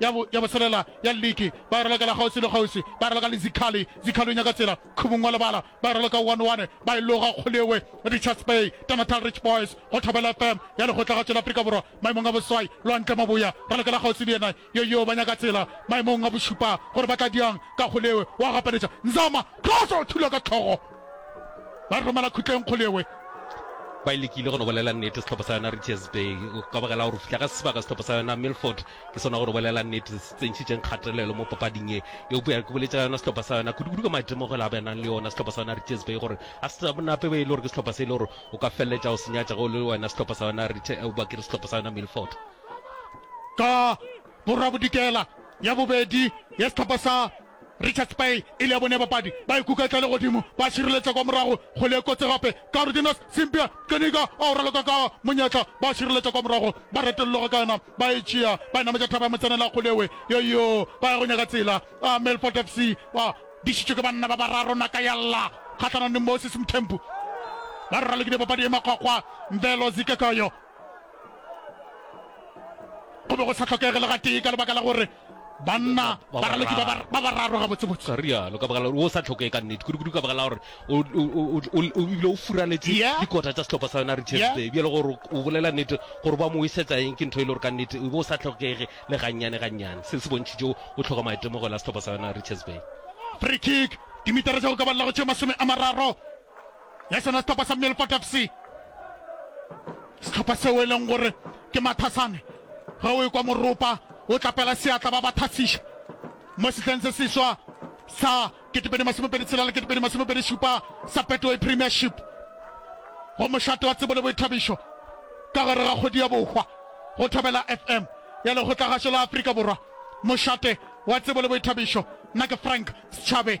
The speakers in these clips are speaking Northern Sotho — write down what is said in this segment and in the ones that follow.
ya bo, ya boselela ya lliki, ba e raloka la kgauswi le kgauswi, ba e raloka le zikhali, zikhali o nyaka tsela, khubung wa lebala, ba e raloka one one, ba e loga Kgolewe, Richards Bay, Tanatal Rich Boys, go Thobela FM, ya Lekgotlagatšo la Afrika Borwa, maemong a boswai, Lwantle Maboya, raloka la kgauswi le yena, yoyoo, ba nyaka tsela, maemong a bošupa, gore ba tla diang, ka Kgolewe, wa gapeletša, Nzama, Xhosa, thula ka tlhogo, ba e romela khutleng Kgolewe, ba e lekile go no bolela nnete sehlopha sa yona Richards Bay, ka baka la gore o fihla ka sebaka sehlopha sa yona Milford, Ke sona gore o bolela nnete, se se tsentšhitšeng kgatelelo mo papading ye. Eupša ke boletše ka yona sehlopha sa yona, kudukudu ka maitemogelo a ba nang le ona sehlopha sa yona Richards Bay, gore ga se sa nape be e le gore ke sehlopha se e le gore o ka feleletša o se nyatša ge o le wena sehlopha sa yona Rich, eupša ke re sehlopha sa yona Milford. Ka borabodikela, ya bobedi ya sehlopha sa. Richards Bay e le ya bone bapadi ba e kuka e tla le godimo ba šireletša kwa morago kgole e kotsi gape Cardenas Simpia Keniga ba o raloka ka monyetla ba šireletša kwa morago ba retolologa ka yona ba e tšea ba e nametša thaba ya motsenela kgolewe yoyo ba ya go nyaka tsela a Melfort FC ba dišitšwe ke banna ba bararo naka ya lla kgahlanong le Moses Mthembu ba ralokile papadi e makgwakgwa Mvelo Zikekayo go be go sa tlhokege le gatee ka lebaka la gore banna ba raloki ba ba- ba bararo gabotsebotse ga rialo ka baka la gore o sa tlhokege ka nnete kudu-kudu ka baka la gore o- o- o- o- o ebile o furaletse Yeah. dikota tsa setlhopha sa yona re Yeah. chesbe bjale gore o bolela nnete gore ba mo isetsa eng ke ntho e le gore ka nnete o be o sa tlhokege le gannyane gannyane se se bontšhitše o o tlhoka maitemogelo a setlhopha sa yona re chesbe free kick dimitara tsa go ka balelago tše masome a mararo ya sona sehlopha sa Millport FC. Sehlopha seo e leng gore ke mathasane ge o ekwa moropa o tlapela seatla ba ba thasiša mo sehleng se seswa sa ketepedi masomepedi tshela le ketepedi masomepedi šupa sa Betway Premiership go mošate wa tsebo le boithabišo ka gare ga kgodi ya bohwa go thobela FM ya lekgotlagašo la Afrika Borwa mošate wa tsebo le boithabišo nna ke Frank Schabe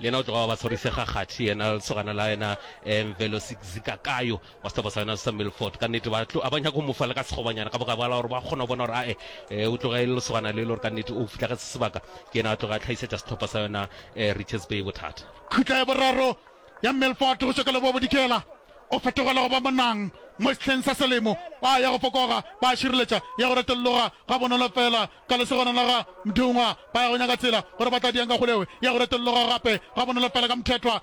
Le yena o tloga wa ba tshwarisega kgathi, yena lesogana la yena um Velosizikakayo wa setlopa sa yona sa Milford. Ka nnete ba tlo, a ba nyaka go mo fa le ka sekgobanyana ka bogabogala gore ba kgona go bona gore ae um o tloga e le lesogana le e le gore ka nnete o fitlhagetse sebaka. Ke yena a tloga a tlhaisetša setlopa sa yona um Richards Bay bothata. Khutla ya boraro ya Milford go tšwa ka Lebobodikela o fetogela go ba monang mo sehleng sa selemo. Ba ya go fokoga, ba šireletša ya go retologa gabonolo fela ka lesogana la ga Mdungwa ba ya go nyaka tsela gore ba tla diang ka kgolewe ya go retologa gape ga bonolo fela ka Mthethwa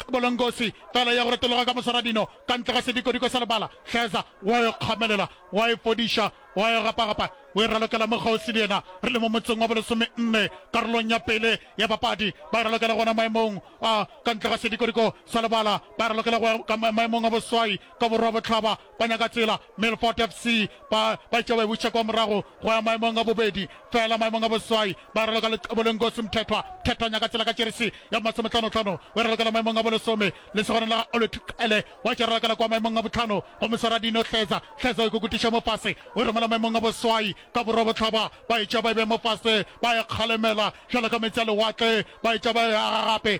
Bolongosi fela ya go retologa ka mosaradino ka ntle ga sedikodiko sa lebala Hleza wa yo kgamelela wa e fodiša wa yo gapagapa o e ralokela mo kgauswi le yena re le mo motseng wa bolesome nne karolong ya pele ya bapadi ba e ralokela gona maemong a ka ntle ga sedikodiko sa lebala ba e ralokela go ya ka ma- maemong a boswai ka borwa botlhaba ba nyaka tsela Milford FC ba ba itše ba e buša kwa morago go ya maemong a bobedi fela maemong a boswai ba raloka Lexeboleng Nkosi Mthethwa Mthethwanya ka tsela ka jeresi ya masometlhanotlhano o e ralokela maemong a bolesome le segoreng la ga Olwethu Qele wa tše ralokela kwa maemong a botlhano go moswara dino Hleza Hleza o e kukutiša mo fase o e romela maemong a boswai ka borwa botlhaba ba e tšea ba e bea mo fase ba e kgalemela bjalo ka meetse a lewatle ba e tšea ba e aga gape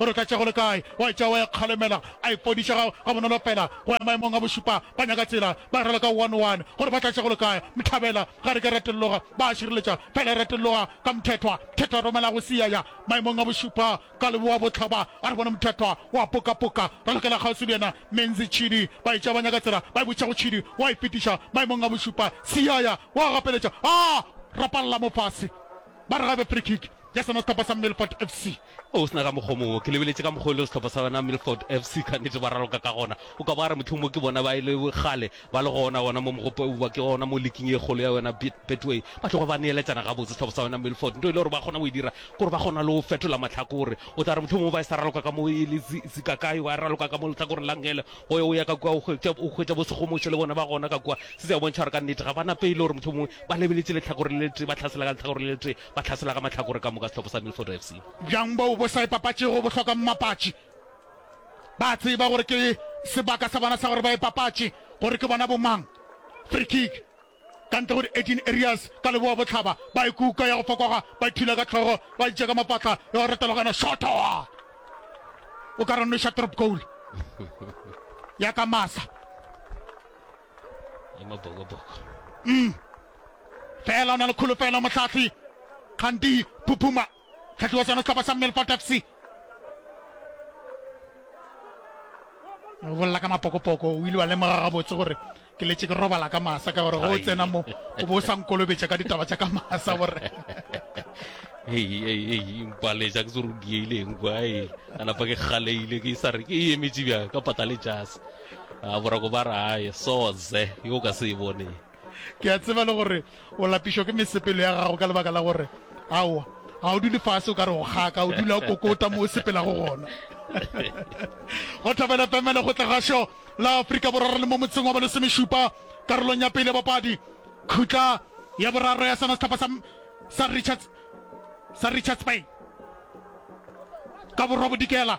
O re ka tša go le kae, wa etša wa e kgalemela, a e podiša ga, ga bonolo pela go ya maemong a bošupa. Ba nyaka tsela, ba rela ka one, one, gore ba tla tša go le kae. Mthabela, ga re ke ra telloga, ba a šireletša, fela ra telloga ka Mthethwa. Mthethwa a romela go sia ya maemong a bošupa ka Leboabohlaba, a re bona Mthethwa o a poka-poka, ra lokela kgauswi le yena. Menzi, Tšhidi, ba etša ba nyaka tsela, ba e botšiša go Tšhidi, wa e fetiša maemong a bošupa. Sia ya wa gapeletša, a rapalla mo fase, ba re ga e be free kick ya sona sehlopha sa Milford FC. O se na ka mokgwa o mongwe. Ke lebeletše ka mokgwa o le sehlopha sa yona Milford FC ka nnete ba raloka ka gona. O ka bo a re mohlomong mo ke bona ba e le kgale ba le gona gona mo mogopo eupwa ke gona mo liking e kgolo ya yona Bet, Betway ba tloga ba neeletšana gabotse sehlopha sa yona Milford. Nto e le gore ba kgona go e dira ke gore ba kgona le go fetola mahlakore. O tla re mohlomongwe ba e sa raloka ka mo e le Zi, Zikakai wa raloka ka mo lehlakoreng la Ngele go ya o ya ka kua o hwetša, o hwetša bo Sekgomosho le bona ba gona ka kua. Se se a bontšha gore ka nnete ga ba na pelo gore mohlomongwe ba lebeletše lehlakore le letee ba hlasela ka lehlakore le letee. ba tlhasela ka mahlakore ka moka sehlopha sa Milford FC. Bjang bao bo sa ipapatšego bo hloka mmapatši. Ba a tseba gore ke sebaka sa bona sa gore ba ipapatše gore ke bona bomang. Free kick ka ntle go di-18 areas ka leboa botlhaba. Ba e kuka ya go fokoga, ba ithula ka tlhogo, ba itše ka mapatla ya go retologana. Shotoa! O ka re nweša trop goal ya ka masa. le Mabokoboko. Umm fela o na le kholofelo mohlahli Kganti Phuphuma, tlhahli wa sona sehlopha sa Milford FC. O bolela ka Mapokopoko, o ile wa lemoga gabotse gore ke letse ke robala ka masa ka gore go o tsena mo o bo o sa nkolobetša ka ditaba tša ka masa gore mpaletša ke se re o dieileng kwa e a napa ke kgaleile ke sa re ke emetše bjang ka pata le jase a borako ba re ae soze yo ka se e bone ke a tseba le gore o lapišwa ke mesepelo ya gago ka lebaka la gore aowa ga o dule fase o ka re go kgaka o dula o kokota mo o sepelago gona go thabela pemele go tlegašo la aforika borwa re le mo motseng wa balesomešupa karolong ya pele bapadi khutla ya boraro ya sona setlhopha sa richards sa richards bay ka borwa bodikela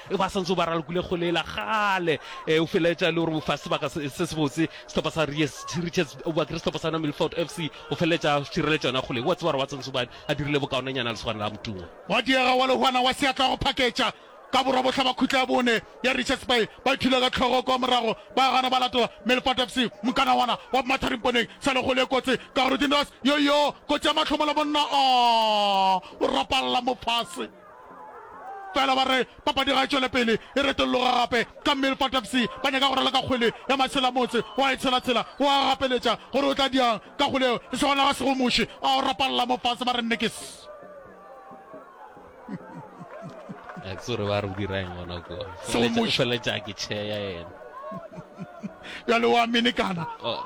E ba santse o ba ralokile kgole ela kgale. E, o feleletša e le gore o fa sebaka se se sebotse sehlopha sa Ries Richards, o bakile sehlopha sa yona Milford FC go feleletša a šireletša yona kgole. O a tseba gore wa Tsantsobane a dirile bokaonanyana lesogana la Motungwa. Gwa diega wa Lehwana wa Seatla go phaketša ka borwabohla ba khutla ya bone ya Richards Bay. Ba ithula ka tlhogo kwa morago ba gana ba latela Milford FC. Mokana wana wa Mathari mponeng sa le kgole e kotsi ka gore Dinras yoyoo kotsi ya mahlomola monna, aa, o rapalla mo fase. Fela ba re papadi ga e tšwele pele e retolloga gape ka Milford FC ba nyaka go raloka kgwele ya matshela motse wa e tshelatshela o a gapeletša gore o tla diang ka kgwele yeo e sego naga sego muši a o rapalla mo fase ba re nnekes Aksore ba re o dira eng gona ko? Sego Feletša- muši. Feletša ke chair ya yena. bjale o a minikana Oh.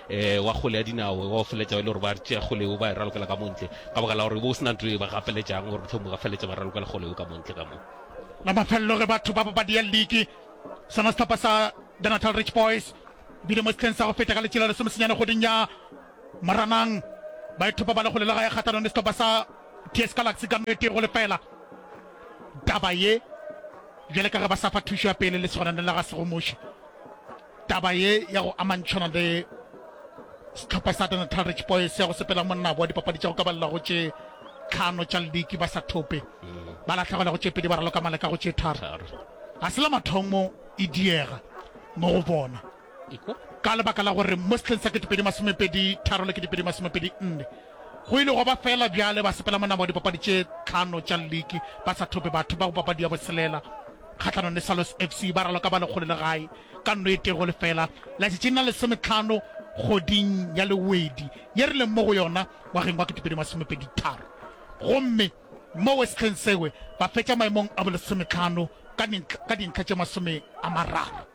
Ee, wa kgole ya dinao e ba o feletša e le gore ba re tšea kgole eo ba e ralokela ka montle ka baka la gore e be o se na nto e ba gapeletšang gore mohlomong ba feletša ba ralokela kgole eo ka montle ka moo. La mafelelo ge batho ba papadi ya liki sona sehlopha sa The Natal Rich Boys bile mo sehleng sa go feta ka letšela lesomesenyane kgweding ya Moranang ba ithopa ba le kgole le gae kgathanong le sehlopha sa TS Galaxy ka no e tee go lefela. Taba ye bjale ka ge ba sa fa thušo ya pele le sehonane la ga Segomuši. Taba ye ya go amantšhana le sehlopha sa Natal Rich Boys ya go sepela monnabo wa dipapadi tša go kabalela go tše tlhano tša liki ba sa thope ba lahlegela go tše pedi ba raloka maleka go tše tharo ga se la mathomo e diega mo go bona ka lebaka la gore mo setlheng sa ketepedi masomepedi tharo le ketepedi masomepedi nne go ile go ba fela bjale ba sepela monabo wa dipapadi tše tlhano tša liki ba sa thope batho ba go papadi ya boselela kgahlanong le Sallos FC ba raloka ba lekgole le gae ka nno e tee go lefela latšatšing la lesometlhano kgoding ya Lewedi ye re leng mo go yona ngwageng wa ketepedi masomepedi tharo gomme mo Westlhensegwe ba fetša maemong a bolesometlhano ka dintlha tše masome a mararo.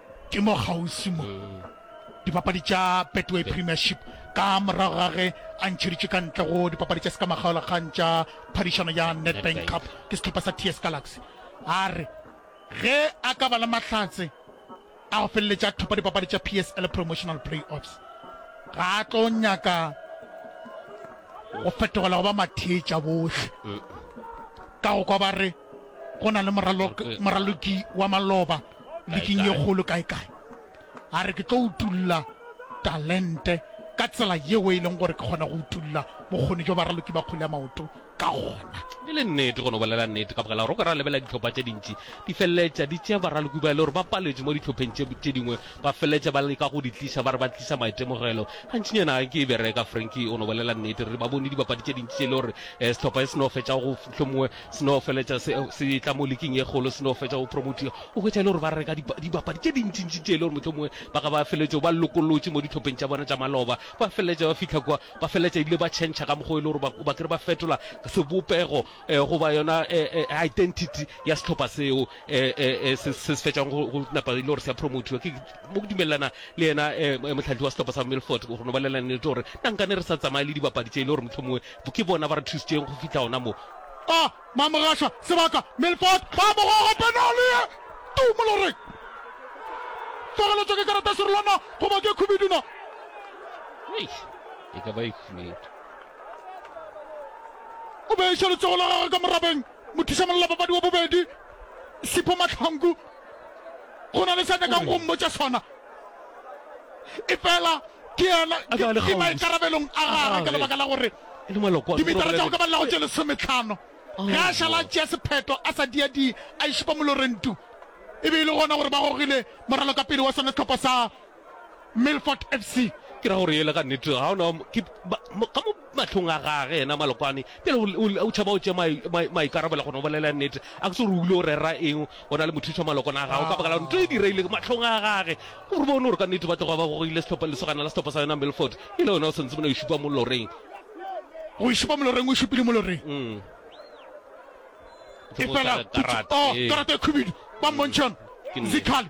Ke mo kgauswi mo dipapadi tša Betway Premiership ka morago ga ge a ntšheditšwe ka ntle go dipapadi tša sekamagaolakgang tša phadišano ya Nedbank Cup ke sehlopha sa TS Galaxy. A re ge a ka ba le mahlatse a go feleletša a thopa dipapadi tša PSL Promotional Playoffs, ga a tlo nyaka go fetogela go ba mathetša bohle ka go kwa ba re go na le moraloki wa maloba liking ye kgolo kae-kae. A re, Ke tlo utulla talente ka tsela yeo e leng gore ke kgona go utulla bokgoni jo baraloki ba kgole ya maoto ka gona. E le nnete, go no bolela nnete, ka baka la gore o ka ra lebelela ditlhopha tše dintši di feleletša di tšea baraloki ba e le gore ba paletše mo ditlhopheng tše dingwe, ba feleletša ba leka go di tliša ba re ba tliša maitemogelo. Gantšinyana ga nke e bereka. Frankie o no bolela nnete. Re ba bone dibapadi tše dintši tše e le gore um sehlopha se se no fetša go hlomongwe Se no feletša se, se tla mo liking ye kgolo, se no fetša go promotiwa. O hwetša e le gore ba reka dipa, dibapadi tše dintšintši tše e le gore mohlomongwe ba ga ba feletše ba lokolotše mo dihlopheng tša bona tša maloba. Ba feletša ba fihla kua, ba feletša ebile ba tšhentšha ka mokgwa o e le gore ba, ba kere ba fetola sebopego eh, goba yona eh, eh, identity ya sehlopha seo eh, eh, eh, se, se se fetšang go, go napa e le gore se a promotiwa. Ke mo ke dumelelana le yena eh, mo- mohlahli wa sehlopha sa Milford, go no ba lela nnete gore na nkane re sa tsamaye le dibapadi tše e le gore mohlomongwe Ke bona ba re thusitšeng go fihla gona mo. A Mamogasha, sebaka, Milford, ba mo goga penale ye tu moloreng. Tlogeletšwa ke karata serolwana goba ke khubedu na? Eish, e ka ba e khubedu. O be a iša letsogo la gagwe ka morabeng, mothuša mollapapadi wa bobedi, Sipho Mahlangu, Go na le sa nyakang go mmotša sona, efela ke yena, ke maikarabelong a gagwe ka lebaka la gore dimetara tša go ka ba lelago tše lesometlhano ge a šala a tšea sephetho a sa diadie a e šupa moloreng tu. E be e le gona gore ba gogile moralokapele wa sona sehlopha sa Milford FC ke ra gore yele ga nnete ga ona ke ba- mo- ka mo matlhong a gage yena malokwane pele o- o- o tšhaba o tše mai- mai- maikarabelo gona o bolela nnete a ke se gore o ile o rera eng o na le mothuša malokwane a gago ka baka la nto e direile ke matlhong a gage gore bone gore ka nnete ba tloga ba gogile sehlopha lesogana la sehlopha sa yona milford e le yona o santse mona o šupa mo loreng go šupa moloreng o šupile moloreng Mm. e fela Karate. Oh, karate e khubidu ba mmontšhon Ke nnete. zikgale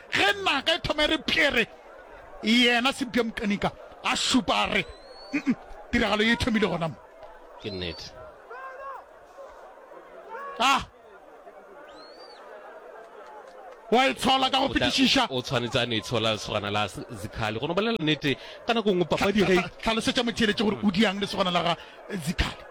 Ge naga e thoma e re pjere, yena Cynthia Mqenika a šupa a re, Nnm, tiragalo ye e thomile gona mo. Ke nnete. A wa e tshola ka go O tla- fetišiša? o tshwanetse a no e tshola lesogana la s- zikhali go no bolela nnete ka nako nngwe papadi ge e- Tlhalosetša motheeletši gore o diang lesogana la ga Zikhali.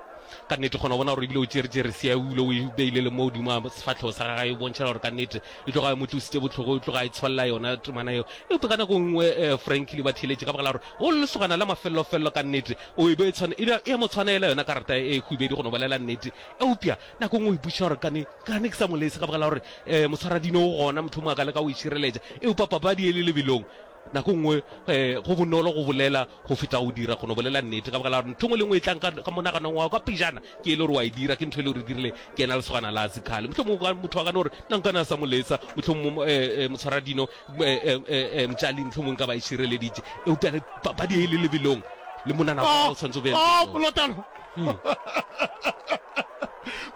Ka nnete, kgona go bona gore ebile o tšere tšere sia o ile o e beile le mo godimo ga sefatlhego sa gagwe, e bontšhela gore ka nnete e tloga e mo tlositse botlhogo, e tloga e tshwalela yona temana eo. Eupša ka nako nngwe eh, Frankie le ba theeletše ka baka la gore go lesogana la mafellofello ka nnete, o e be e tshwane, e, e a mo tshwanela yona karata e khubedu, go no bolela nnete. Eupša nako nngwe o ipotšiša gore kane, kane ke sa mo lese ka baka la gore eh, motshwaradino o gona, mohlomongwe a ka leka go e šireletša, eupša papadi e le lebelong. Nako e nngwe go bonolo go bolela go feta go dira, go no bolela nnete, ka baka la gore ntho e nngwe le e nngwe e tlang ka monaganong wa ka pejana ke e le gore wa e dira, ke ntho e le gore e dirile ke ena lesogana la Zikhale. Mohlomongwe motho a ka no re, na nka na sa mo letsa, mohlomongwe motshwaradino, mtšali, mohlomongwe nka ba e šireleditše. Eupša le papadi e le lebelong, le monana wa ka o swanetše o be lebelong.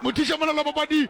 Mothiša monana wa papadi.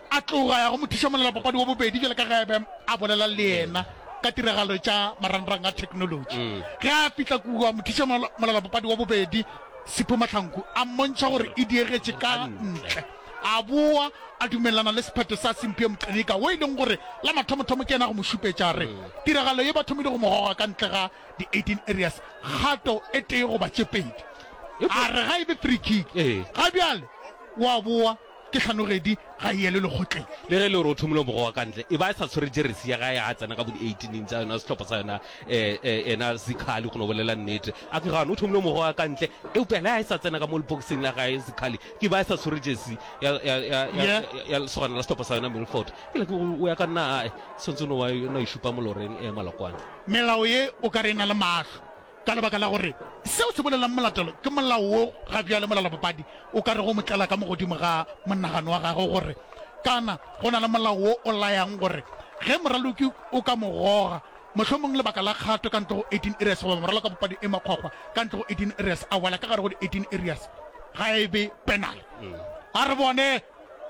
A tloga a ya go mothušamolelapapadi wa bobedi bjale ka ge a be a bolela le yena ka tiragalo tša marangrang a theknolotši. Ge a fihla kua, mothušamolelapapadi wa bobedi Sipho Mahlanku a mmontšha gore e diegetše ka ntle, a boa a dumelelana le sephetho sa Simphiwe Mqenyika wo e leng gore la mathomothomo ke yena a go mo šupetša a re tiragalo ye ba thomile go mo goga ka ntle ga di-18 areas kgato e tee goba tše pedi. A re ga e be free kick, ga bjale o a boa. Ke kganogedi ga e yelwe lekgotleng. Le ge e le gore o thomile mogo wa ka ntle, e ba e sa tshwere jeresi ya gae ga a tsena ka bo di eighteen tsa yona sehlopha sa yona um ena Zikhali go no bolela nnete. A ke gane o thomile mogo wa ka ntle eupša le ga e sa tsena ka mo lepokising la gae Zikhali ke ba e sa tshwere jeresi ya, ya, ya, ya, ya, ya lesogana la sehlopha sa yona Milford. Ke le ke go o ya ka nna, aa, swantse o no wa, no e šupa moloreng, um Malokwane. Melao ye o ka re e na le mahlo. Ka lebaka la gore seo se bolelang molatelo ke molao wo, ga bjale molalabopadi o ka re go mo tlela ka mo godimo ga monagano wa gagwe gore, Kana go na le molao wo o layang gore ge moraloki o ka mo goga, mohlomong lebaka la kgato ka ntle go eighteen areas goba moralokabopadi e makgwakgwa ka ntle go eighteen areas a wela ka gare go di eighteen areas, ga e be penal? A re bone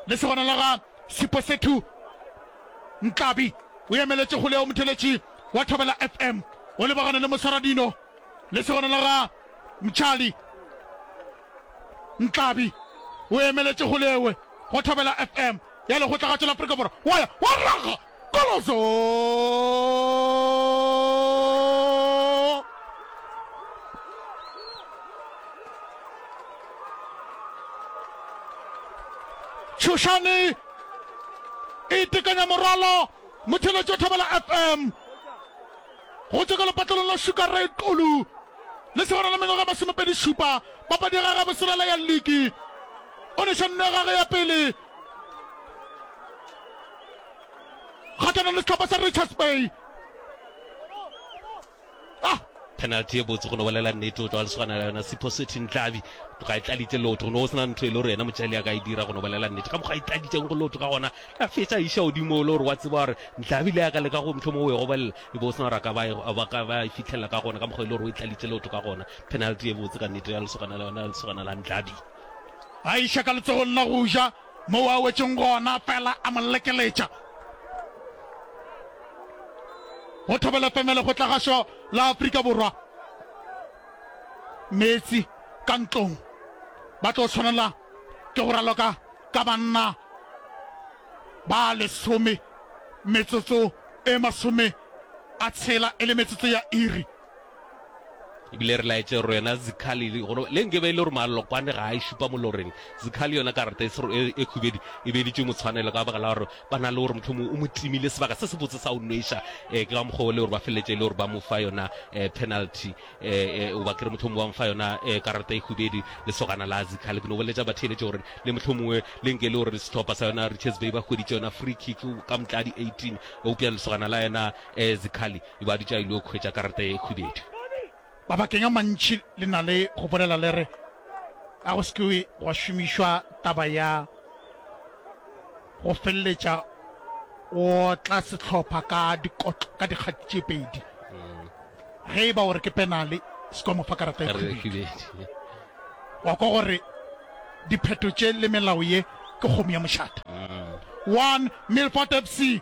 le se gona la ga Siposethu Nhlabi, o emeletše kgole ya Umtheletši. wa Thobela FM o lebagane le moswaradino le segona la ga Mtshali Nhlabi o emeletše gole ewe go Thobela FM ya Lekgotlagatšo la Afrika Borwa wa ya wa raga koloso Tshushani e itekanya morwalo Motheletše Thobela FM go tšwa ka lepatlelong la Sugar Ray Xulu le segona la mengwaga masomepedi šupa papadi ya gage boselela ya liki o neša nno ya gage ya pele kgatlhanong le sehlopha sa Richards Bay Ah, penalty ye botse go no bolela nnete o tlo a le swanela yona Sipho Sethi Ntlabi ga e tlalitse lotho go no go sena ntho e le gore yena motšali a ka e dira go no bolela nnete ka mokgwa e tlalitšeng go lotho ka gona a fetsa a iša godimo o le gore wa tseba gore Ntlabi le ya ka le ka go mtlho mo o e gobelela e be o sena gore a ka ba e- a ba ka ba e fitlhelela ka gona ka mokgwa e le gore o e tlalitse lotho ka gona penalty ye botse ka nnete ya lesogana la yona ya lesogana la Ntlabi a iša ka letsogong la go ja Moo a wetšeng gona, fela a mo lekeletša. Go Thobela FM le go tla gašo la Afrika Borwa. Meetse ka ntlong. Ba tlo tshwanela ke go raloka ka banna ba lesome metsotso e masome a tshela e le metsotso ya iri. Ebile re laetše gore yona Zikhali, le nke be e le gore Malokwane ga a e šupa moloreng, Zikhali yona karata e, e, e khubedu e beeditšwe motshwanelo ka baka la gore ba na le gore motlho mongwe o mo timile sebaka se se botse sa o nweša um ke ka mokgwa o le gore ba feleletše e le gore ba mo fa yona um penalty um oba kere motlho mongwe ba mo fa yona um karata e khubedu lesogana la Zikhali ke no boletša batheeletše gore le motlho mongwe le nke le gore sehlopha sa yona Richards Bay ba hweditše yona free kick ka motladi 18 eupša lesogana la yona um Zikhali E be a dutše a ile go hwetša karata ye khubedu. Mabakeng a mantši le na le go bolela le re, Ga go se ke gwa šomišwa taba ya go feleletša o otla sehlopha ka dikotlo ka dikgati tše pedi. Ge e ba o re ke penale, se ke wa mo fa karata ye khubedu. Wa kwa gore diphetho tše le melao ye ke kgomo ya mošate. One, Milford FC.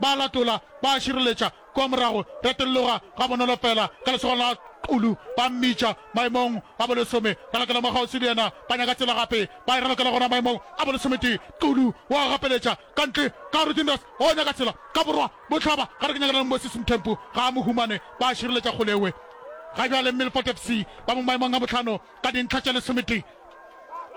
Ba a latola, ba a šireletša. Kua morago, retelloga gabonolo feela ka lesogong la Xulu, ba mmitša maemong a bolesome. Re lokela mwa kgauswi le yena. Ba nyaka tsela gape. Ba e re lokela gona maemong a bolesometee. Xulu o a gapeletša ka ntle, ka Ruthindus o nyaka tsela ka borwa bohlaba. Gare ke nyakana le Moses Mthembu, ga a mo humane. Ba a šireletša kgolewe. Ga bjale Milford FC ba mo maemong a bohlano ka dintlha tše lesometee.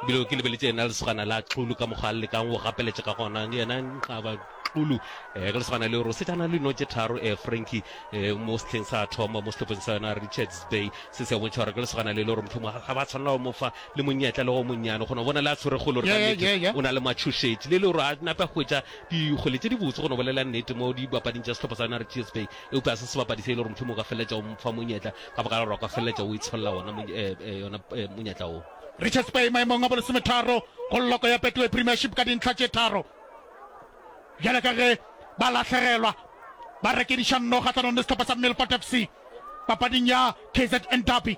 bile ke lebeletse yena lesogana la xulu ka mokgwa a lekang go gapeletša ka gona yena nxaba xulu um ka lesogana le ro setšana le notše tharo um franki um mo setlheng sa thoma mo setlhopheng sa yona richards bay se se bontšha gore ka lesogana le le gore motlhomo ga ba tshwanela go mo fa le monyetla le go monnyane kgona bona le a tshwere kgolo gore o na le matšhošetši le le gore a nape a hwetša dikgole tše dibotse kgona bolela nnete mo dibapading tša setlhopha sa yona richards bay eupša se sebapadi se e le gore motlhomo o ka feleletša o mfa monyetla ka baka la gore wa ka feleletša o itsholela wona yona monyetla wo. Richards Bay maemong a bolesometharo go lloko ya Betway Premiership ka dintlha tše tharo bjale ka ge ba lahlegelwa ba rekediša nno kgahlanong le sehlopha sa Milford FC papading ya KZN Derby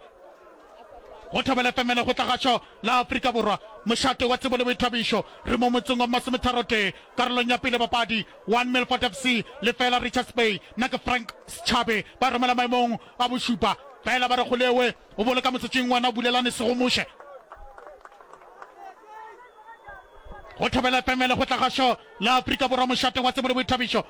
go thobela femele go tlagašo la Afrika Borwa mošate wa tsebo le boithabišo re mo motseng wa masometharotee karolong ya pele papadi One Milford FC lefeela Richards Bay nna ke Frank Schabe ba romela maemong a bošupa fela ba re Golewe o boloka motsotsing wena o bulelane segomuše go thobela fm le go tla ga sho la Afrika Borwa mošate wa tsebo le boithabišo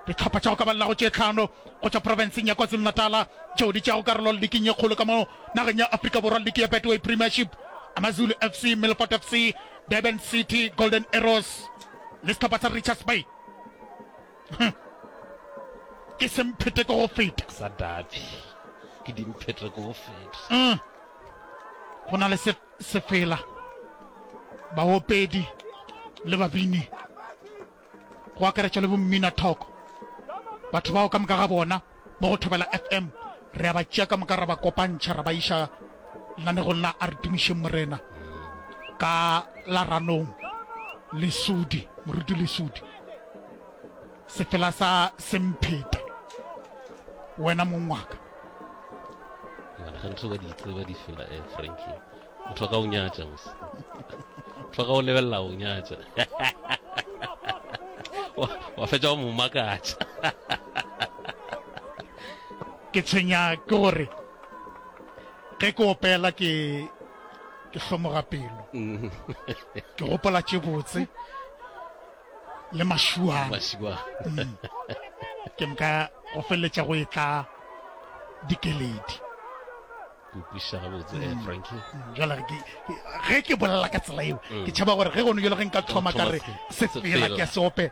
Dihlopha tša go ka ba lago tše tlhano go tšwa profenseng ya KwaZulu-Natal tšeo di tšeago karolo liking ye kgolo ka mo nageng ya Afrika Borwa, liki ya Betway Premiership, AmaZulu FC, Milford FC, Durban City, Golden Arrows le sehlopha sa Richards Bay. Ke semphete ko go feta. Sa Dabi. Ke dimphete ko go feta. Go na le se sefela, baopedi le babini. go akaretša le bommina-thoko, batho bao ka moka ga bona mo go Thobela FM re a ba tšea ka moka ra ba kopantšha ra ba iša lenanegong la A Re Tumišeng Morena ka la Ranong. Lesudi, Moruti Lesudi, sefela sa Semphete, wena mong wa ka. Mara gantši ba di tseba di fela eh, Frankie. motho a ka o nyatša mose motho a ka o lebelela o nyatša wa fetša wa mo makatša ke tshwenya ke gore ge ke opela ke ke hlomoga pelo mm. ke gopola tše botse le mašuana mm. ke nka go feleletša go e tla dikeledi Ke ukwišiša gabotse eh, mm. Frankie. Mm, jwale ke ge ke bolela ka tsela eo mm. ke tšhaba gore ge gono jalo ge nka thoma ka re se fela ke a seope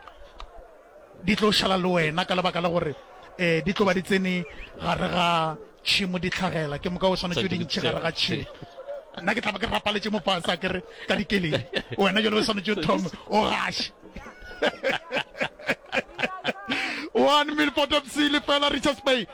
di tlo šala le wena ka lebaka la gore um di tlo ba di tsene gare ga tšhimo di tlhagela ke moka o swanetse o di ntšhe gare ga tšhimo nna ke tlaba ke rapaletše mopasa ke re ka dikeleng wena jalo o swanetse o thome o gashe one minute for top seal fela richards bay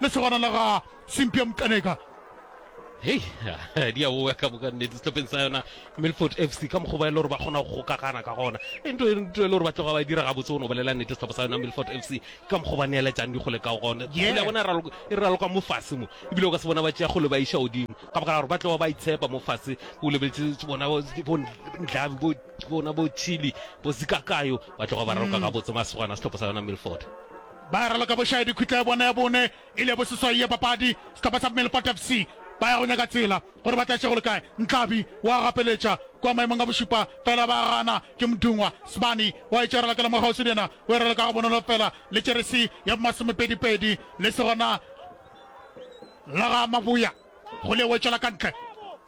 lesogana la ga Cynthia Mtaneka. Hei, di a oa ka moka nnete sehlopeng sa yona Milford FC ka mokgwa ba e le gore ba kgona go gokagana ka gona. E nto e nto e le gore ba tloga ba e dira gabotse go no bolela nnete sehlopha sa yona Milford FC ka mokgwa ba neeletšang dikgole ka gona. Yeah. Kgole ya bona e raloka e raloka mo fase mo ebile o ka se bona ba tšea kgole ba iša godimo ka baka la gore ba tloga ba itshepa mo fase o lebeletse bona bo bo Ndlabi bo bona bo Chili bo Zikakayo ba tloga ba raloka gabotse masogana sehlopha sa yona Milford. Ba raloka bošae dikhwitla ya bona ya bone e le ya boseswai ya papadi. Sehlopha sa Melipota FC ba ya go nyaka tsela gore ba tlatše go le kae. Ntlhabi o a gapeletša kua maemong a bošupa fela ba gana ke Mdungwa. Sibani o a etša ralokela mo kgauswi le yena o e raloka gabonolo fela le jeresi ya bomasomepedipedi le segona la ga Mabuya go le wetšela ka ntle.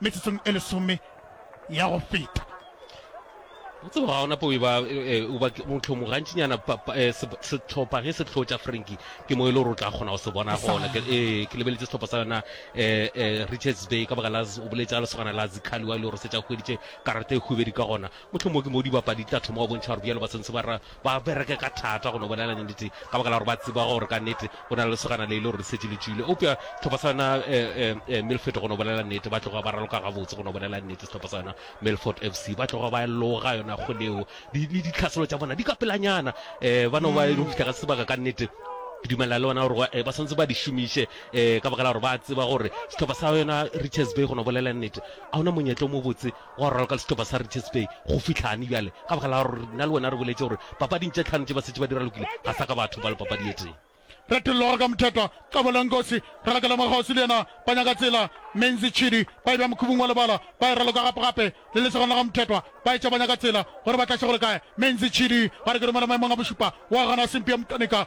metsotsong e lesome ya go feta o tseba ga ona po e ba eh, o ba motlhomo gantšinyana pa- pa- eh, se- setlhopha ge se tlhotša franki ke mo e le gore o tla kgona go se bona gona Ke- eh, ke lebeletse setlhopha sa yona eh, eh, richards bay ka baka la z- o boletša lesogana la zikhali wa e le gore se tša hweditše karata e hubedi ka gona motlhomo ke mo dibapadi di tla thoma go bontšha gore bjalo ba sentse ba ra Ba bereka ka thata go no bolela nnete ka baka la gore ba tseba gore ka nnete go na le lesogana le e le gore le šetše le tšwile. Eupša sehlopha sa yona Milford go no bolela nnete ba tloga ba raloka gabotse go no bolela nnete sehlopha sa yona Milford FC. Ba tloga ba loga yona kgole yeo le ditlhaselo tša bona di ka pelanyana. Ba no ba e le go fihla ka sebaka ka nnete ke dumelela le bona gore ba swanetse ba di šomiše ka baka la gore ba tseba gore sehlopha sa yona Richards Bay go no bolela nnete a hona monyetla o mobotse Gwa raloka le sehlopha sa Richards Bay go fihlane bjale, ka baka la gore nna le wena re boletše gore papading tše tlhano tše ba setše ba di ralokile ga sa ka ba thopa le papadi ye tee. Retologa ka Mthethwa, Kabula Nkosi, Ralokela Makgosi le yena ba nyaka tsela, Menzi Chidi ba e bea mokhubung wa lebala ba e raloka gapegape le lesogana la ga Mthethwa ba etša ba nyaka tsela gore ba tlaše go le kae, Menzi Chidi ba re ke romela maemong a bošupa wa gana Simpie Mtanika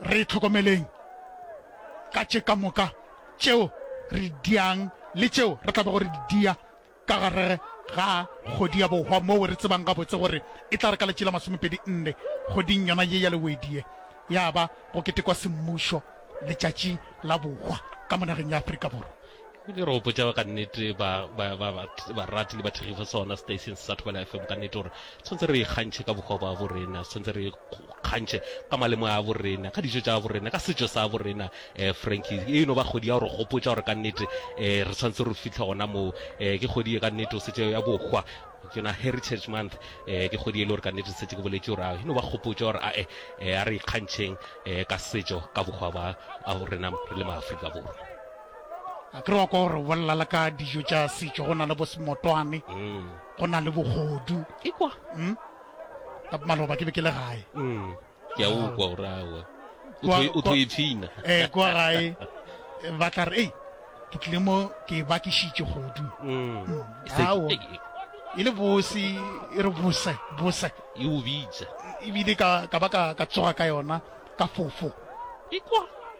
Re itlhokomeleng ka tše ka moka tšeo re di diang le tšeo re tlabago re di dia ka gare ga kgodi ya bohwa moo re tsebang gabotse gore e tla re ka letši la masomepedi nne kgoding yona ye ya lewedi ye ya ba go ketekwa semmušo letšatši la bohwa ka monageng ya Afrika Borwa. Diteropo tša ka nnete ba ba ba barati le bathekgi fa sona station sa Thobela FM ka nnete gore tshwantse re ikgantšhe ka bohwa ba bo rena tshwantse re ikgantšhe ka malemo a bo rena ka dijo tša bo rena ka setšo sa bo rena eh, Frankie e no ba kgodi ya gore gopotša gore ka nnete eh, re tshwantse re fitlhe gona moo eh, ke kgodi ye ka nnete o setse ya bohwa ke yona heritage month eh, ke kgodi e le gore ka nnete setse ke boletše gore a e no ba gopotša gore ae eh, a re ikgantšheng eh, ka setšo ka bohwa ba a bo rena re le maaforika borwa A ke re wa kwa gore o bolela le ka dijo tša setšo go na le bosemotwane go na le bogodu ikwa mm? ka maloba ke be ke le gae mm. ke a ukwa gore awa o tlo ipshina um kwa gae ba tla re ei ke tlile mo ke ba ke šitše godu mm. mm. ao e le bose e re bose bose e o bitsa ebile ka ba ka tsoga ka yona ka fofo ikwa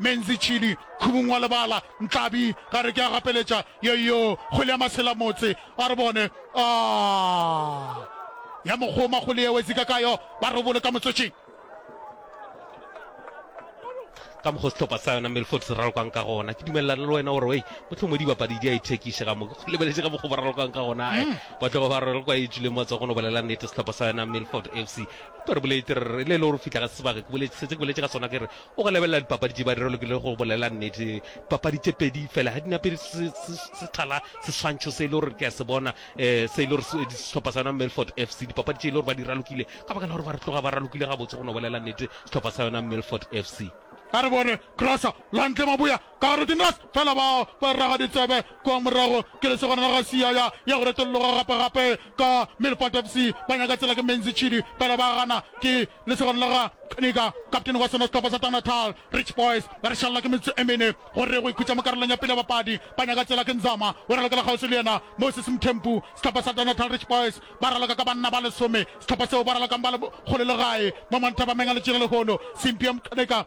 Menzi Chili, Khubung wa lebala, Ntlhabi, Ga re ke a gapeletša, Yoyo, Kgwele ya masela motse, A re bone, Aah, Ya mokgoma kgwele yeo, Ezika Kayo, Ba robole ka motsotšing. ka mokgwa sehlopha sa yona Milford se ralokang ka gona ke dumelelana le wena gore wei mohlomong dibapadi di a ithekiše ga moke go lebeletše ka mokgwa ba ralokang ka gona ae ba tlogo ba ralokwa e tšwile matso go no bolela nnete sehlopha sa yona Milford FC ba re bolete re le le gore fihla ga sebaka ke boletše setse ke boletše ka sona ke re O go lebelela dipapadi tše ba di ralokilego go bolela nnete. Dipapadi tše pedi fela ga di na pele se, se, se thala seswantšho se e le gore ke a se bona, eh, se e le gore se, sehlopha sa yona Milford FC, dipapadi tše e le gore ba di ralokile ka baka la gore ba re tloga ba ralokile gabotse go no bolela nnete sehlopha sa yona Milford FC. A re bone, crosser, Lantle Maboea Ka re dinglas fela ba ba raga ditsebe kwa morago ke lesogana la ga Siyaya ya go retolloga gape gape ka Milford FC ba nyaka tsela ke Menzi Chidi fela ba gana ke lesogana la ga Kniga kaptene wa sona sehlopha sa Tanatal Rich Boys ba re šalla ke metsotso e mene go re go ikhutša mo karolong ya pele ya bapadi ba nyaka tsela ke Nzama o ralokela kgauswi le yena Moses Mthembu sehlopha sa Tanatal Rich Boys ba raloka ka banna ba lesome sehlopha seo ba ralokang ba le kgole le gae mo Monthabameng a le tšere lehono Simpie Mkneka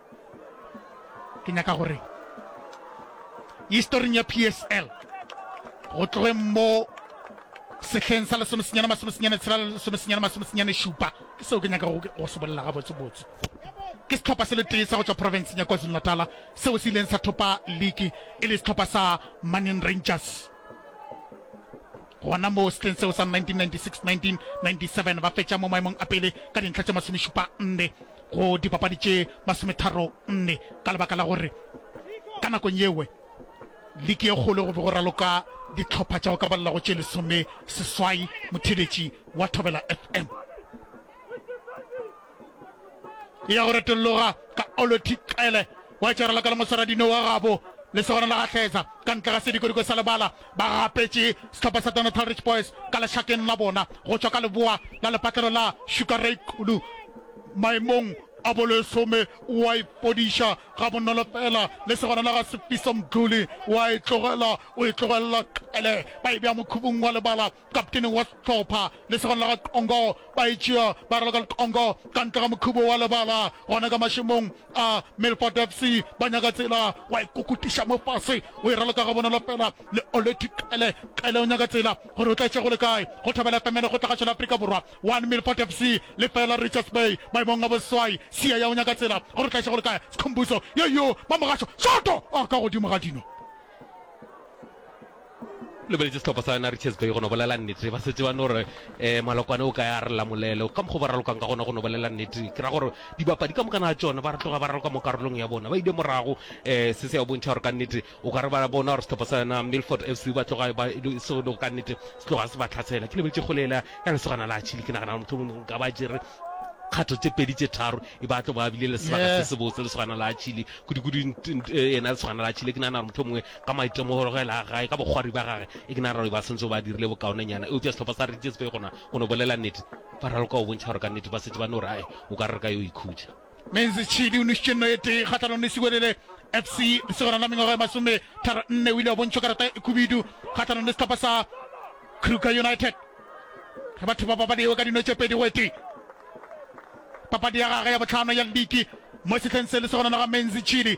ke nyaka gore historing ya psl go tloge mo sehleng sa lesomesenyana masomesenyana tshela lesomesenyana masomesenyana šupa ke seo ke nyaka go se bolela gabotsebotse ke setlhopha se le tee sa go tswa porofenseng ya kwazulu natala seo se ileng sa thopa league e le setlhopha sa manin rangers gona mo setleng seo sa 1996-1997 ba fetša mo maemong a pele ka dintlha tše masomešupa nne go dipapadi tše masometharonne ka lebaka la gore ka nakong yewe liki ye kgolo go be go raloka ditlhopha tša go ka balela go tše lesome seswai motheletši wa thobela fm e ya go retologa ka olothi tlele wa tšarela ka le mosaradino wa gabo le segona la gahleza ka ntle ga sedikodiko sa lebala ba gapetše sehlopha sa Donatal Rich Boys ka lešakeng la bona go tšwa ka leboa la lepatlelo la Sugar Ray Xulu maemong a bolesome wa ipodiša ga bonolo fela le segona la ga Sefiso Mdluli wa e tlogela o e tlogelela qele ba e bea mokhubung wa lebala Kaptene wa sehlopha lesogana la ga Congo ba e tšea ba raloka le Congo ka ntle ga mokhubo wa lebala gona ka mašemong a Milford FC. Ba nyaka tsela wa e kukutiša mo fase, o e raloka gabonolo fela le Oleti Qele. Qele o nyaka tsela gore o tla e tšea go le kae. Go Thobela FM le go Tlagatšo la Afrika Borwa, 1 Milford FC, lefeela Richards Bay maemong a boswai. Siaya o nyaka tsela gore o tla e tšea go le kae. Skhumbuzo, yoyo, Mamogasho, shoto! Oh, ka godimo ga dino! lebeletše sehlopha sa yona richards bay go no bolela nnete ba setse ba no re um malokwane o ka ya re lamolele ka mokgwa ba ralokang ka gona go no bolela nnete ke ra gore dibapadi ka mokana a tsone ba re tloga ba raloka mo karolong ya bona ba ile morago um se se ya bontšha gore ka nnete o ka re ba bona gore sehlopha sa yona milford f c ba tloga ba se go ka nnete se tloga se ba tlhasela ke lebeletše golela ya lesogana la chile ke nagana motlho mongwe nka ba jere kgatho tse pedi tse tharo e ba tlo ba bile le sebaka se sebotse lesogana la chile kudu-kudu ena lesogana la chile ke nagana gore motlho mongwe Ka maitemogelo-gelo a gage, ka bokgwari bja gage, Ignaroy ba sentse ba dirile bokaonenyana. Eupša sehlopha sa Richards Bay gona, go no bolela nnete, ba raloka go bontšha gore ka nnete ba šetše ba no re, Ae, o ka re re ka yo ikhutša. Menzi Chidi o nošitše nno e tee kgahlanong le Siwelele FC. Lesogana la mengwaga e masome tharo nne o ile wa bontšhwa karata e khubidu kgahlanong le sehlopha sa Kruger United ge batho ba baba lewe ka dino tše pedi go e tee. Papadi ya gage ya bohlano ya liki mo sehleng se, lesogana la ga Menzi Chidi,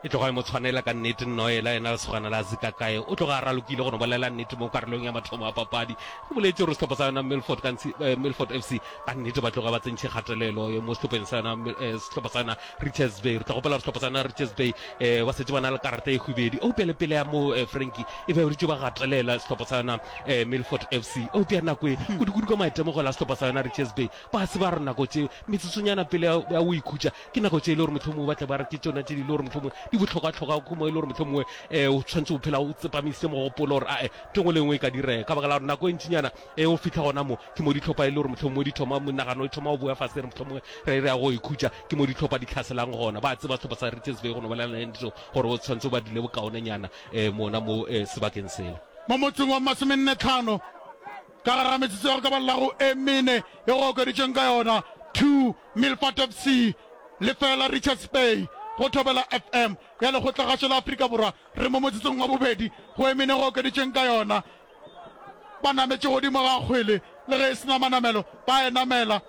E tloga e mo tshwanela ka nnete, nna o ela yena lesogana la Zikakae. O tloga a ralokile go no bolela nnete mo karolong ya mathomo a papadi. Re boletše gore sehlopha sa yona Milford, ka ntshi, eh, Milford FC ka nnete ba tloga ba tsentše kgatelelo eh, mo sehlopheng sa yona, Mil- eh, sehlopha sa yona Richards Bay. Re tla gopela gore sehlopha sa yona Richards Bay eh, ba setse ba na le karata e hwibedi. Eupša le pele ya moo eh, Frankie e be ba dutše ba gatelela sehlopha sa yona eh, Milford FC. Eupša nako e, kudukudu ka maitemogelo a sehlopha sa yona Richards Bay, ba se ba re nako tše metsotsonyana pele ya ya go ikhutša Ke nako tše e le gore mohlomongwe o batle ba re ke tšona tše di le gore mohlomongwe di bohlokwa-tlhokwa go mo e le gore mohlomongwe um o tshwanetse o phela o tsepamisitse mogopolo gore ae ke ngwe le nngwe e ka direga ka baka la gore nako e ntšinyana e o fitlha gona mo ke mo ditlhopha e le gore mohlomongwe di thoma monagano e thoma go boya fase re mohlomongwe re re ya go ikhutša ke mo ditlhopha di tlhaselang gona ba tseba setlhopha sa Richards Bay go no bolela le ntho gore o tshwanetse o ba dile bokaonenyana um mona mo um sebakeng sela mo motseng wa masomenne tlhano Ka gare ga metsotso ya go ka ba llago e mene e go okeditšweng ka yona, two Milford FC, lefeela Richards Bay, go Thobela FM ya Lekgotlagašo la Afrika Borwa. Re mo motsotsong wa bobedi go e mene go okeditšweng ka yona. Ba nametše godimo ga kgwele le ge e se na manamelo, ba e namela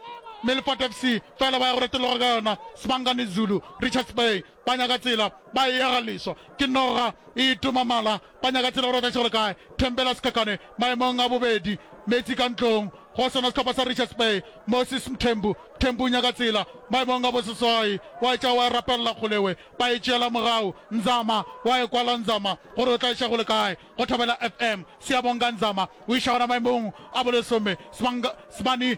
Milford FC, feela ba ya go retologa ka yona Sibangani Zulu, Richards Bay. Ba nyaka tsela, ba eya ga leswa. Ke noga e toma mala, ba nyaka tsela go rata šegole kae. Thembela Sikhakhane maemong a bobedi, meetse ka ntlong go sona sehlopha sa Richards Bay. Moses Mthembu, Thembu nyaka tsela maemong a boseswai, wa etša wa e rapelela kgolewe, ba e tšeela mogau. Nzama wa e kwala, Nzama gore o tla eša gole kae. Go Thobela FM, Siyabonga Nzama o iša gona maemong a bolesome. Sibang, Sibani.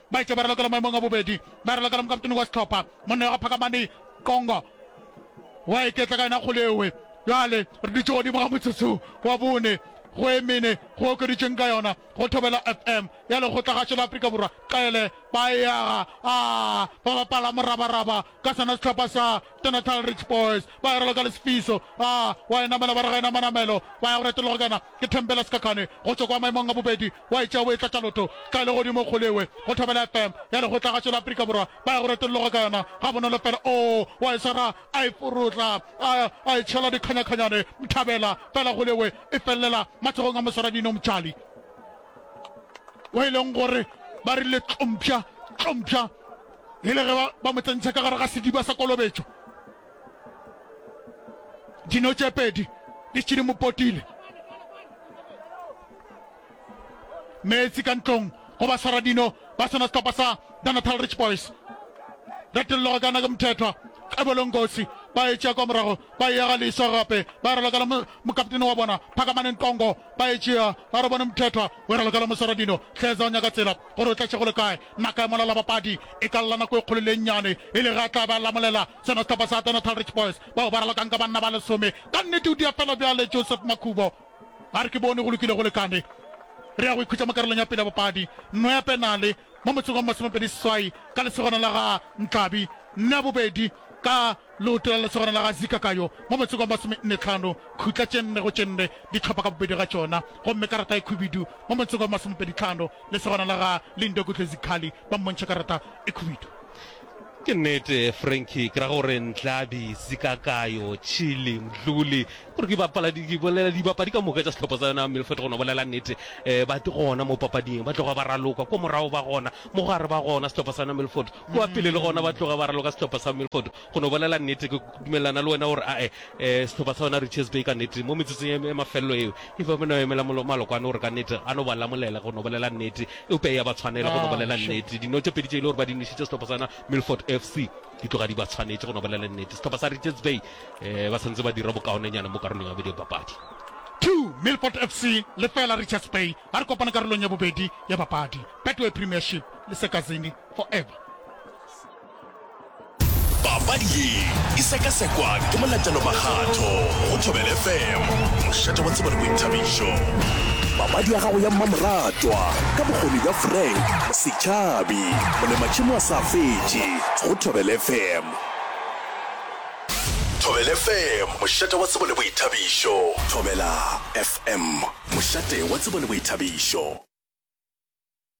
Baetša ba ralokela maemong a bobedi, ba ralokela mokaptene wa sehlopha, monna wa ga Phakamani Qongo wa iketla ka yona kgole ewe. Bjale re dutše godimo ga motsotso wa bone go e mene go okeditšweng ka yona go Thobela FM ya lekgotlagatšo la Afrika Borwa. Qele ba e aga, a ba bapala morabaraba ka sona sehlopha sa Denatal Rich Boys, ba e ralokela Sifiso, a wa e namela ba re ga e na manamelo, ba ya go retologa ka yona ke Thembela Sikhakhane go tšwa kwa maemong a bobedi. wa etša o etla ka loto ka legodimo kgole ewe go thobela fm ya lekgotlagašo la afrika borwa ba ya go retolologa ka yona ga bonolo fela o wa e swara a e forotla a a e tšhela dikganyakhanyane mthabela fela kgole ewe e felelela matsogong a moswaradino motšali wa e leng gore ba rile tlompša tlompša e le ge ba- ba mo tsentšha ka gare ga sediba sa kolobetšo dino tše pedi di tšhidimopotile meetse ka ntlong go ba swara dino ba sona setlhopha sa the natal rich boys retelelo go kana ke mothethwa ebolong kotsi ba e tšea kwa morago ba e yaga leiso gape ba re lokela mokaptene wa bona phakamaneng tongo ba e tšea ba re bone mothethwa o re lokela moswara dino tlhetsa o nyaka tsela gore o tlatše go le kae naka e molala bapadi e ka lla nako e kgolo le nnyane e le ga tla ba lamolela sona setlhopha sa the natal rich boys bao ba ralokang ka banna ba lesome ka nnete o dia fela bjale joseph makhubo A re, Ke bone go lokile go lekane. Re ya go ikhutša mo karolong ya pele ya bapadi. Nno ya penale mo motseng wa masomepedi seswai ka lesogana la ga Nkabi, nno ya bobedi ka leoto la lesogana la ga Zikakayo mo motseng wa masomenne tlhano, khutla tše nne go tše nne dihlopha ka bobedi ga tšona, gomme karata e khubidu mo motseng wa masomepedi tlhano, lesogana la ga Lindokuhle Zikhali ba mmontšha karata e khubidu. Ke nnete Frankie, ke ra gore Nhlabi, Sikakayo, Chili, Mdluli, gore ke bapala di ke bolela dibapadi ka moka tša sehlopha sa yona Milford gona bolela nnete eh, ba te gona mo papading ba tloga ba raloka ko morago ba gona mo gare ba gona sehlopha sa yona Milford kwa pele le gona ba tloga ba raloka sehlopha sa Milford gona bolela nnete ke dumelana le wena gore ae Sehlopha sa yona Richards Bay ka nnete mo metsotsong ya mafelelo yeo e be e no emela maloko ano gore ka nnete a no ba lamolela go no bolela nnete, eupša e a ba tshwanela go no bolela nnete. Dino tše pedi tše e le gore ba di nwešitše sehlopha sa yona Milford FC di tloga di ba tshwanetše go no bolela nnete. Sehlopha sa Richards Bay ba santse ba dira bokaonenyana mo karolong ya bobedi ya papadi. Two, Milford FC lefeela Richards Bay ba re kopana karolong ya bobedi ya papadi. Betway Premiership le Sekazini forever. papadi ye e sekasekwa ke molatelo makgatho go thobele fm mošate wa tsebo le boithabišo papadi ya gago ya mmamoratwa ka bokgoni bja frank setšhabi molematšhimo wa sa fetše go thobele fm thobele fm mošate wa tsebo le boithabišo thobela fm mošate wa tsebo le boithabišo